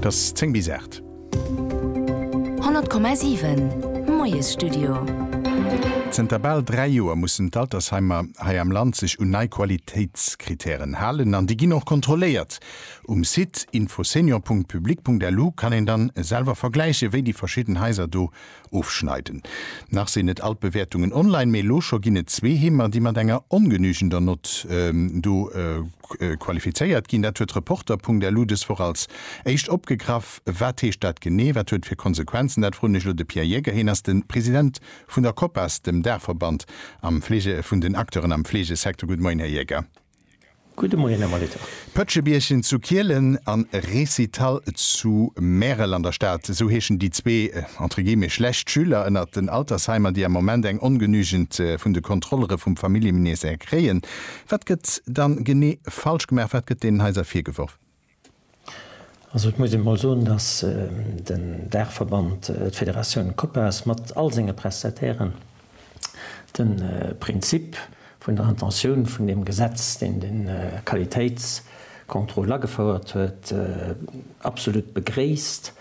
't ass 10 bis 8. 100,7, Moiesstudio. Zënter bal dräi Joer mussen d'Altersheimer hei am Land sech un nei Qualitéitskrittären halen an déi ginn och kontrolléiert. Um Site infosenior.public.lu kann een dann selwer vergläichen, wéi déi verschidden Haiser do Ofschneiden. Nach sinn net all d'Bewäertungen online, mee elo scho ginn et zwee Heemer, déi mat enger ongenügender Nott do qualifizéiert ginn. Dat huet Reporter.lu dës Woch als éischt opgegraff. Wat heescht dat genee? Wat huet fir Konsequenzen? Dat froen ech elo de Pierre Jäger. Hien ass de President vun der Copas, dem Daachverband vun den Acteuren am Fleegesecteur. Gudde Moien, Här Jäger. Gudde Moien, Här Molitor. Pëtschebierchen zu Kielen an Récital zu Märel an der Stad, esou heeschen déi zwee entre guillemets schlecht Schüler ënnert den Altersheimer, déi am Moment eng ongenügend vun de Kontrollere vum Familljeministère kréien. Wat gëtt dann genee falsch gemaach? Wat gëtt deenen Haiser virgeworfen? Also et muss een emol soen, datt den Daachverband, d'Federatioun Copas mat all senge Prestatairen de Prinzip vun der Intentioun vun deem Gesetz, deen de Qualitéitscontrôle agefouert huet, absolut begréisst.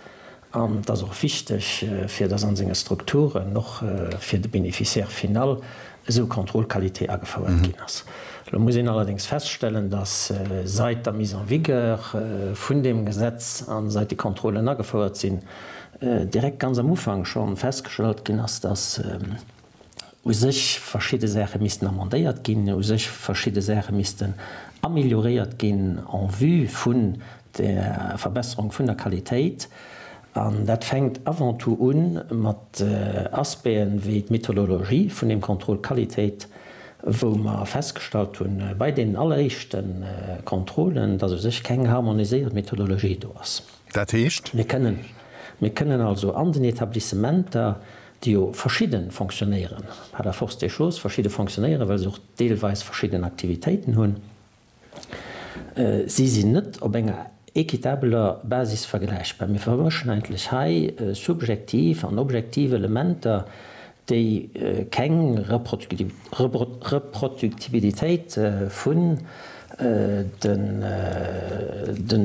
An et ass och wichteg, fir dass an senge Strukturen och fir de Bénéficiaire final esou Kontrollqualitéit agefouert ginn ass. Elo muss een allerdéngs feststellen, dass seit der Mise en vigueur vun deem Gesetz a seit déi Kontrollen agefouert sinn, direkt ganz am Ufank schonn festgestallt ginn ass, dass, u sech verschidde Saache missten amendéiert ginn, u sech verschidde Saache missten amélioréiert ginn en vue vun der Verbesserung vun der Qualitéit. An dat fänkt avant tout u mat Aspecten wéi d'Methodologie vun deem Contrôle Qualitéit, wou mer festgestallt hu bei deenen alleréischte Contrôlen, dass u sech keng harmoniséiert Methodologie do ass. Dat heescht? Mir kënnen also an den Etablissementer déi jo verschidde fonctionnéieren, par la force des choses verschidde fonctionnéieren, well se och deelweis verschidden Aktivitéiten hunn, si sinn net op enger équitabeler Basis vergläichbar. Mir vermëschen eigentlech hei subjektiv an objektiv Elementer, déi keng Reproductibilitéit vun den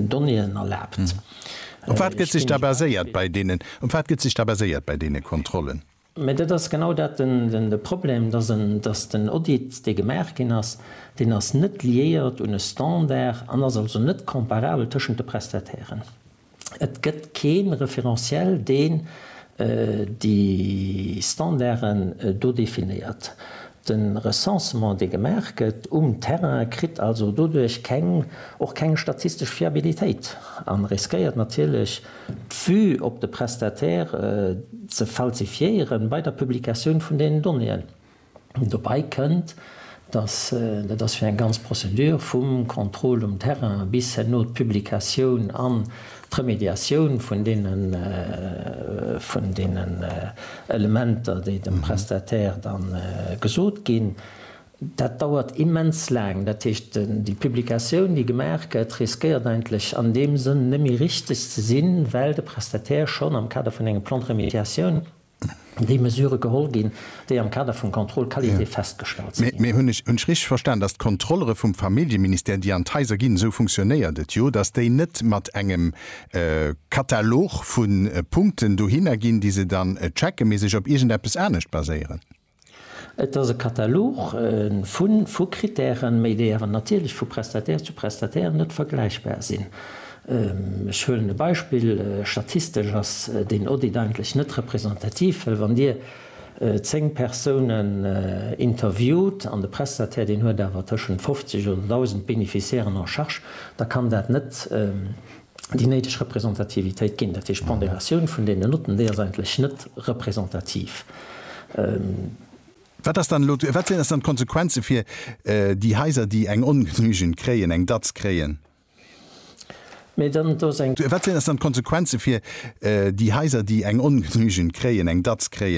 Donnéeën erlaabt. Op wat gëtt sech da baséiert bei deenen, op wat gëtt sech da baséiert bei deene Kontrollen? Mä dat ass genau dat den, de Problem, dass en, dass den Audit, dee gemaach ginn ass, deen ass net liéiert un e Standard an ass also net comparabel tëschent de Prestatairen. Et gëtt kee Référentiel, deen déi Standarden do definéiert. De Recensement, dee gemaach gëtt um Terrain, kritt also doduerch keng, och keng statistesch Fiabilitéit an riskéiert natierlech, d'Vue op de Prestataire ze falsifiéieren bei der Publikatioun vun deenen Donnéeën. Dobei kënnt, dass, dat ass fir eng ganz Prozedur vum Contrôle um Terrain bis herno d'Publikatioun an D'Remédiatioun vun deenen Elementer, déi dem Prestataire da gesot ginn, dat dauert immens laang. Dat heescht, déi Publikatioun, déi gemaach gëtt, riskéiert eigentlech an deem Sënn net méi richteg ze sinn, well de Prestataire schonn am Kader vun engem Plan de remédiation déi Mesure geholl ginn, déi am Kader vum Contrôle qualité festgestallt si ginn. Mee hunn ech richteg verstan, datt d'Kontrollere vum Familljeministère, déi an d'Haiser ginn, esou funktionéiert et jo, datt déi net mat engem Katalog vu Punkten dohinner ginn, déi se dann checken, mee sech op iergendeppes anescht baséieren? Et ass e Katalog vu vu Krittären, méi déi awer natierlech vu Prestataire zu Prestataire net vergläichbar sinn. Ech huelen e Beispill, Statistesch ass deen Audit eigentlech net representativ, well wann Dir 10 Persounen interviewt an de Prestataire deen huet awer tëschent 50 oder 1.000 Bénéficiairen en charge, da kann dat net déi néideg Representativitéit ginn, dat heescht d'Ponderatioun vun deene Notten, déi ass eigentlech net representativ. Wat ass dann elo, wat sinn dann d'Konsequenze fir déi Haiser, déi eng ongenügend kréien, eng Datz kréien? Mee dann, do ass eng. Wat sinn dann d'Konsequenze fir déi Haiser, déi eng ongenügend kréien, eng Datz kréien?